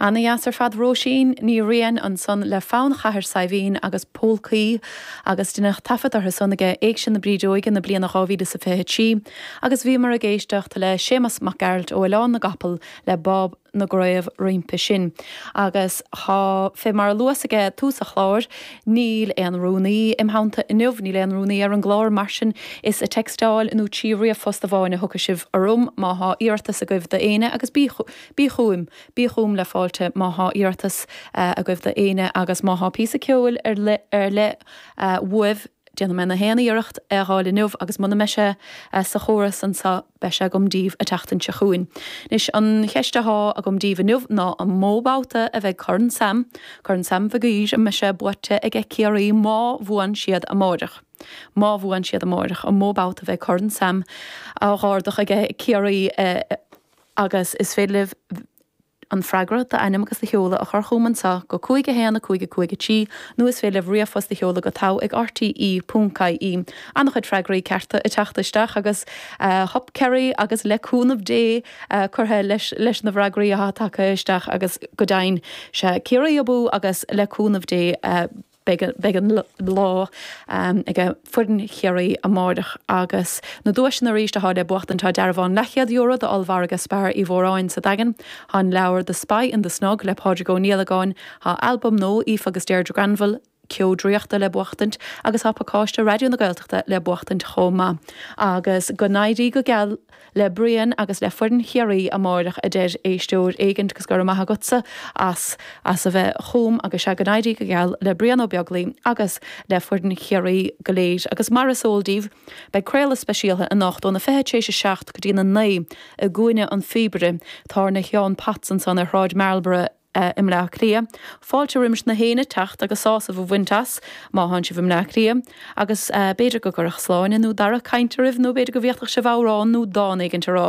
Ana dheas ar fad Róisín Ní Riain ansan le fonn Chathair Saidhbhín agus Pólcaí agus deineadh taifead orthu san ag Éigse na Brídeoige na bliana dhá mhíle is a fiche trí agus bhíomar ag éisteacht le Séamas Mac Gearailt ó Oileán na gCapall le Bob na gCraobh roimpi sin agus thá fé mar a luas aige tús an chláir Níl aon rúnaí im theannta inniu, níl aon rúnaí ar an gclár, mar sin is textáil nó trí ríomhphost amháin a thiocfaidh sibh orm má thá iarratas agaibh do éinne agus bí chugam, bí chugam le fáilte má thá iarratas agaibh do éinne agus má thá píosa ceoil ar leith uaibh déanfaidh mé na haon iarracht é a dháil inniu agus muna mbeidh sé sa chóras anseo beidh sé agam daoibh a tseachtain seo chugainn. Anois, an cheist athá agam daoibh inniu ná an mó babhta a bheidh Corn Sam, Corn Sam Mhig Uidhir ambaiste, buaite aige Ciarraí má bhuann siad amáireach? má bhuann siad amáireach, an mó babhta a bheidh Corn Sam á dh'ardach aige Ciarraí agus is féidir libh an freagra d'ainm agus do sheoladh a chur chugam anseo go 515353 nó is féidir libh ríomhphost a sheoladh go taw ag rte ponc ie. An-chuid freagraí cearta ag teacht isteach agus hup Kerry agus le cúnamh Dé curtha leis leis na bhfreagraí atá tagtha isteach agus go deimhin, sea Ciarraí abú agus le cúnamh Dé. Beidh an lá ag foireann Chiarraí amáireach agus na duaiseanna arís athá le buachtaint. Tá dearbhán leathchéad euro do Ollmhargadh Spar Uí Mhóráin sa Daingean, tá an leabhar The Spy in the Snug le Pádraig Ó Niallagáin, tá albam nua Aoife agus Deirdre Granville, Ceo Draíochta le buachtaint agus tá pacáiste Raidió na Gaeltachta le buachtaint chomh maith. Agus go n-éirí go geal! le Brian agus le foireann Chiarraí amáireach a deir éisteoir éigint agus go raibh maith agatsa as as a bheith chugam agus sea go n-éirí go geal le Brian Ó Beaglaoi agus le foireann Chiarraí go léir agus mar is eol díbh beidh craoladh speisialtha anocht óna fiche tar éis a seacht go dtí'n a naoi i gCúinne an Phíobaire, tábhairne Sheáin Pats ansan ar Shráid Marlborough i. i mBleá Cliath. Fáilte roimis na héinne teacht agus sásamh a bhaint as, má thánn sibh i mBleá Cliath, agus b'fhéidir go gcuirfeadh Sláine nó Darragh caint oraibh nó b'fhéidir go bhféadfadh sibh amhrán nó dán éigint a rá.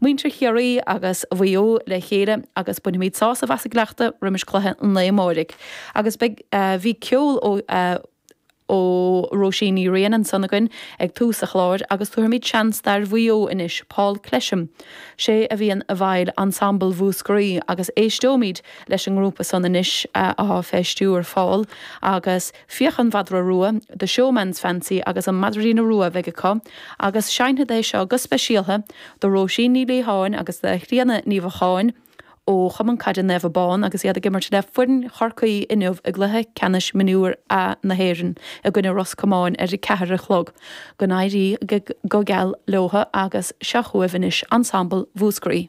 Muintir Chiarraí agus Mhaigh Eo le chéile agus bainfimid sásamh as a gcuileachta roimis cluiche an lae amáirigh. Agus beidh, bhí ceol ó. ó Róisín Ní Riain ansan againn ag tús a chláir agus tabharfaimid seans d'fhear Mhaigh Eo anois, Paul Clesham. Sé a bhíonn i bhfeighil Ensemble Mhúscraí agus éisteoimid leis an ngrúpa san anois atá fé stiúir Phaul agus Fiach an Mhadra Rua, The Showman's Fancy agus An Maidirín a Rua a bheidh acu agus seinnfead é seo go speisialtha do Róise Ní Liatháin agus do Chríona Ní Bheacháin. ó Chumann Caide Naomh Abán agus iad ag imirt le foireann Chorcaí inniu i gCluiche Ceannais Mionúir A na hÉireann i gcoinne Ros Comáin ar a ceathair a chlog. Go n-éirí go geal leotha agus seo chugaibh anois Ensemble Mhúscraí.